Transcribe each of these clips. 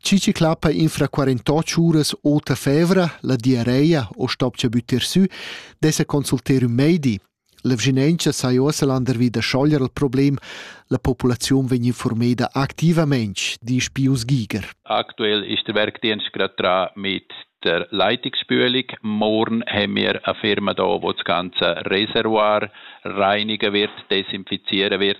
Chi chi clappa infra quarantotg uras ota fevra, la diarreia o stopcha büttir sü, dessa consulter ün meidi. L'evginentscha sai uossa landervi da schoglier il problem, la populaziun vegn informeda activamaing, disch Pius Giger. Aktuell ist der Werkdienst gerade dran mit der Leitungsspülung. Morgen haben wir eine Firma da, die das ganze Reservoir reinigen wird, desinfizieren wird.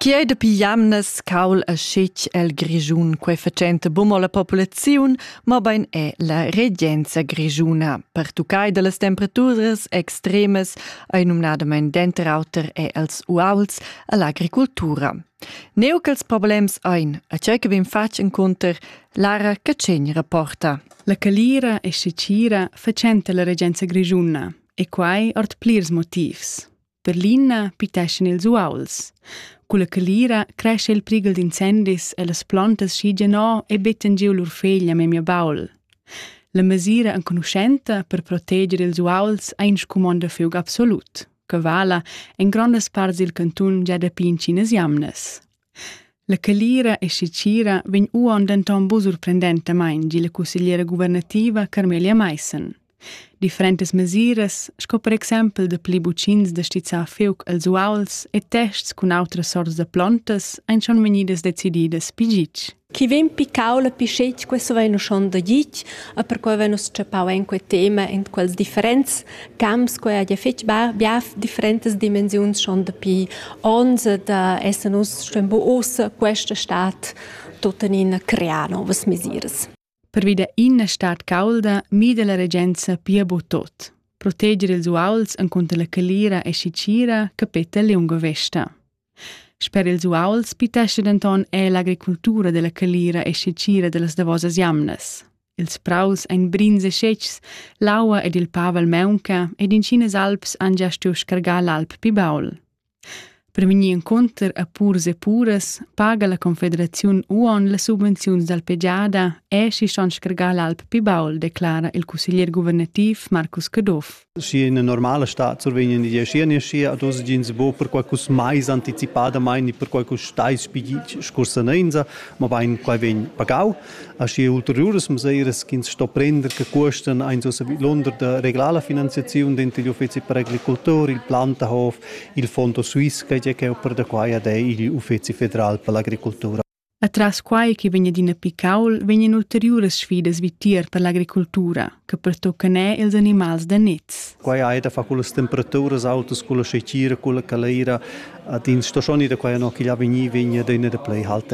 Chi ei dapi jamnas caul e schich el Grischun quei facenta bumo la populaziun, ma bein è la regenza grischuna. Pertuccai dallas temperaturas extremas ei numnadamein denter auter è els uauls e l'agricultura. Neu ch'ils problems ein, a tgei che vegn fatg encunter Lara Catschegn rapporta. La calira e sicira facenta la regenza grischuna e quai ord plirs motivs. Per l'ina piteschan ils uauls. Cu la calira cresce il prigel d'incendis e las plantas schigen o e bettan giu lur feglia memia baul. La mesira enconuschenta per proteger ils uauls ha in scumonda fiug absolut. che vala en grondas parts dil cantun gia dapi intsinas jamnas. La calira e sicira vegn uon denton bu surprendentamain, di la cussegliera guvernativa Carmelia Meissen. Differentas mesiras, sco per exempel da pli bucins da stizzar feuc els uauls e tests cun autras sorts da plontas, ein schon vegnidas decididas pigic. Chi vegn picau la pischetg, questo vegn uschon da gitg, e perquei vegn nus tschepau en quei tema en quels differents camps, quei ha fetg bia differentas dimensiuns schon dapi ons, da esser nus schon bo ossa questa stat tuttenina crear novas mesiras. Pervi da ina stad caulda mida la regenza pia bu tot. Proteger ils uauls encunter la calira e sicira capeta lunga vesta. Sper ils uauls pitesce denton è l'agricultura della calira e sicira dellas davosas jamnas. Ils praus ein brins e scetgs, l'aua ed il pavel meunca ed in Chinas alps han gia stuiu scargar l'alp pi baul. Per vegnir encunter a purs e puras paga la confederaziun uonn las subvenziuns dal pegiada e schi ston scargar l'alp pi baul, declara il cusseglier guvernativ Marcus Caduff. Schi in normala stat survegnan die Geschirrne schier ad uns gins bo per qualcus mais anticipadamain ni per qualcus stais spigit scursanenza, ma bain quai vegn pagau. Aschi ulteriuras mesiras ch'ins sto prender che cuostan ein ussa vidlunder da reglar la finanziaziun denter gli uffeci per agricoltura, il Plantahof, il Fondo Swiss che è per da quai ad è igl uffeci federal per l'agricoltura. Atras quai che vegn adina picaul, vegnan ulteriuras sfidas vitier per l'agricoltura. che pertuccan er ils animals da niz. Quai hai da far con las temperaturas autas, con la scecira, con la caleira. Ad ins sto schon da quai no che gli vegni vegna da una da play halt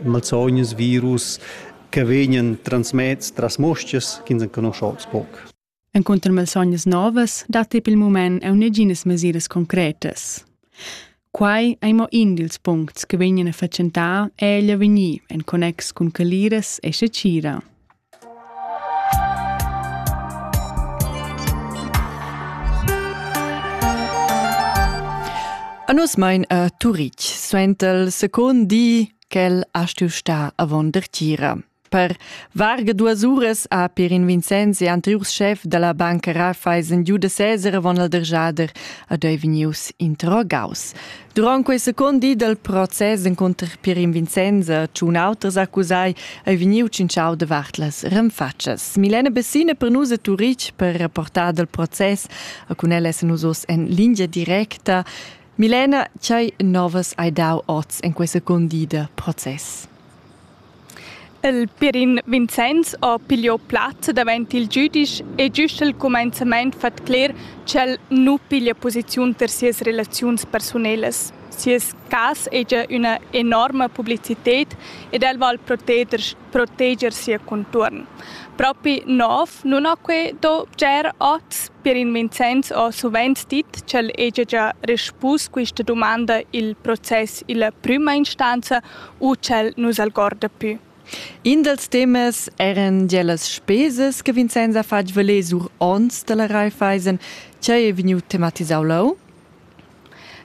malsognas, virus che vegnan transmets tras moscias che ins conosce poc. En contro malsognas novas dat il moment a neginas mesiras concretas. Quai è mo in dils puncts che vegnan a fatgentar è egli vegnir en connex cun caliras e scecira. A nus mein a Turitg suentel second di ch'el ha stuiu star avon dertgira. Per varga duas uras ha Pirin Vincenz e anteriurs chef dalla banca Raiffeisen giu da seser avon il dergiader ad ei vegnius interrogaus. Durant quei second di dal process encunter Pirin Vincenza, tschun auters accusai, ei vegniu tschintschau davart las renfatschas. Milena Bessina per nus a Turitg per reportar dal process, a cun ella essan nus oz en lingia directa. Milena, tgei novas hai dau oz en quei second di da process? Il Pirin Vincenz ha pigliò plaz davent il giudisch e giust al cumenzament fat cler ch'el nu piglia posiziun ter sias relaziuns persunelas. Sias cas è già üna enorma publicited ed el val proteger, proteger sia contuorn. Propi nov nun ha que do bger oz? Pirin Vincenz ha suvent dit ch'el hegia già respus quista dumanda i'l process illa prüma instanza u ch'el nus algorda pü. In dals temas eran gia las spesas che Vincenz ha fatg valer sur onns da la Raiffeisen, che è vegniu tematisau leu.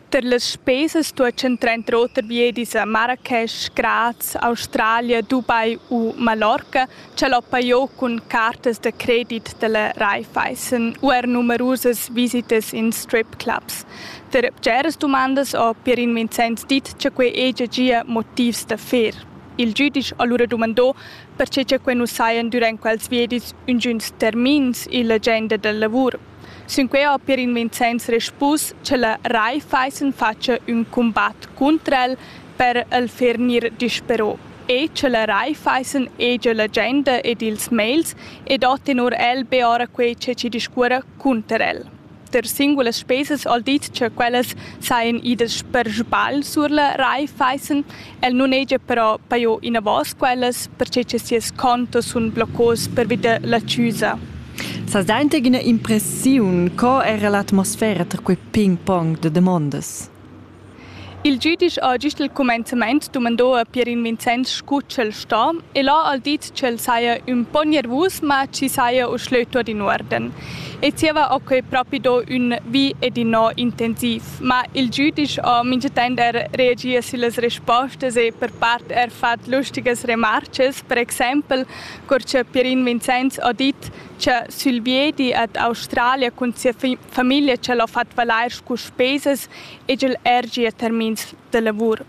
Per las spesas stuessen trenter oter viedis a Marrakesch, Graz, Australia, Dubai u Mallorca Ch'el hoppa jo cun cartas da credit da la Raiffeisen u er numerusas visitas in stripclubs. Der bgeras dumandas ho Pierin Vincenz dit cha quai hegia gia motivs da fer. Il giudisch ha lura dumandò perche cha quai nu sajan durant quels viedis üngüns termins illa agenda da lavur. Sinquei ha Pierin Vincenz respus che la Raiffeisen fatscha ün cumbat cunter el per el fer gnir dispero e che la Raiffeisen hegia l'agenda ed ils mails ed ho tenor el be ora quei che ci discuorra cunter el. Der singulas spesas al dit che quellas saien idas per sbagl sur la Raiffeisen El nun hegia però pajo inavos quellas perche cha sias contos sun bloccos pervi da l'accüsa. S'has dainta üna impressiun co era l'atmosfera tar quei ping-pong da damondas? Il giudisch ha gist il cumenzament dumandò a Pierin Vincenz scu ch'el sto e l'ha al dit ch'el saja ün po gnervus ma chi saja uschlö tuot in uorden e zieva ho quei propi do ün vi ed innò intensiv. Ma il giudisch ho minchatant er reagi sillas respostas e per part er fat lustigas remarchas, per exaimpel cur cha Pierin Vincenz ho dit cha sül viedi ad Australia cun sia famiglia ch'el ho fat valair scu spesas egl er gia termins da lavur.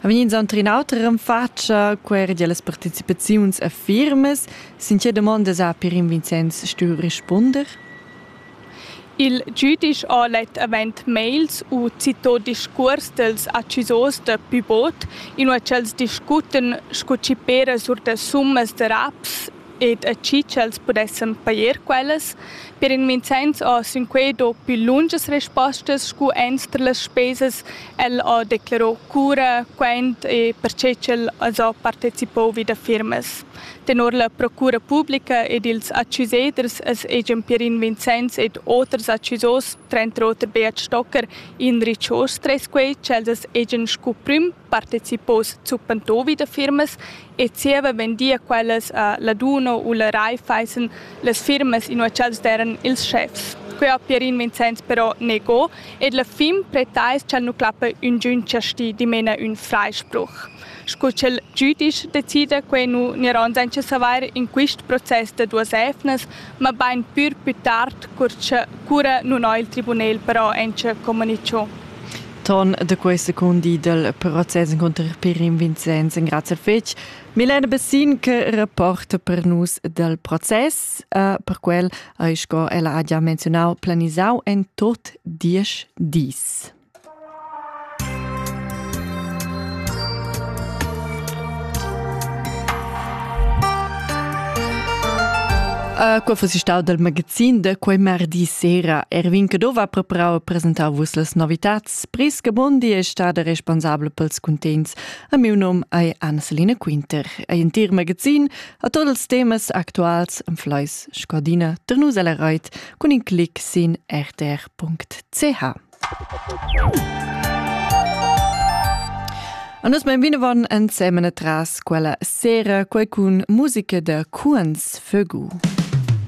Ha vegni inzonter in auter en fatscha, quei era gie las participaziuns a firmas. Sin tge domondas ha per in Vincenz stuiu rispunder? Il giudisch ha let avent mails u citò discuors dels accusors da Pibot, inua ch'els discuten sco chi pera sur da summas da raps ed a chi ch'els pudessan pajer quellas. Per in Vincenz ho sinquei do pü lungas respostas scu entr las spesas. El ho declaro cura, quant e perche ch'el as ho partecipou vi da firmas. Tenor la Procura publica ed ils accuseders es egian Pierin Vincenz ed oters accusos, tranter oter Beat Stocker, inrich hoz tres quei ch'els as egian scu prüm partecipos zuppentovi da firmas e zieva vendia quellas a Laduno u la Raiffeisen las firmas inua ch'els deran ils schefs. Quei ha Pierin Vincenz però nego ed la fin pretais ch'el nu clappa üngün chasti dimena ün freispruch. Sco ch'el giüdisch decida quei nu gniran senza savair in quist process da duas evnas, ma bain pür pü tard cur cha cura nun ho il tribunel però auncha comunicho. Ton da quei secundi dal process encunter Pirin Vincenz engrazia fetg Milena Bessin che rapporta per nus dal process. Uh, per quel hai, sco ella ha già menzionau, planisau en tot diesch dis. Qua fas stau dal magazin da quei mardi sera. Erwin Cadov ha preparau e presentau vus las novitats. Priska Bondi è stada responsabla pels cuntents. A miu nom è Anna-Selina Quinter. Ein entir magazin a tots els temas actuals am Fleis Scordina Ternusa la Reit cun in clic sin rtr.ch. A nus mein vinavon ensemen tras quella sera quei cun musica da Cuens Vögu.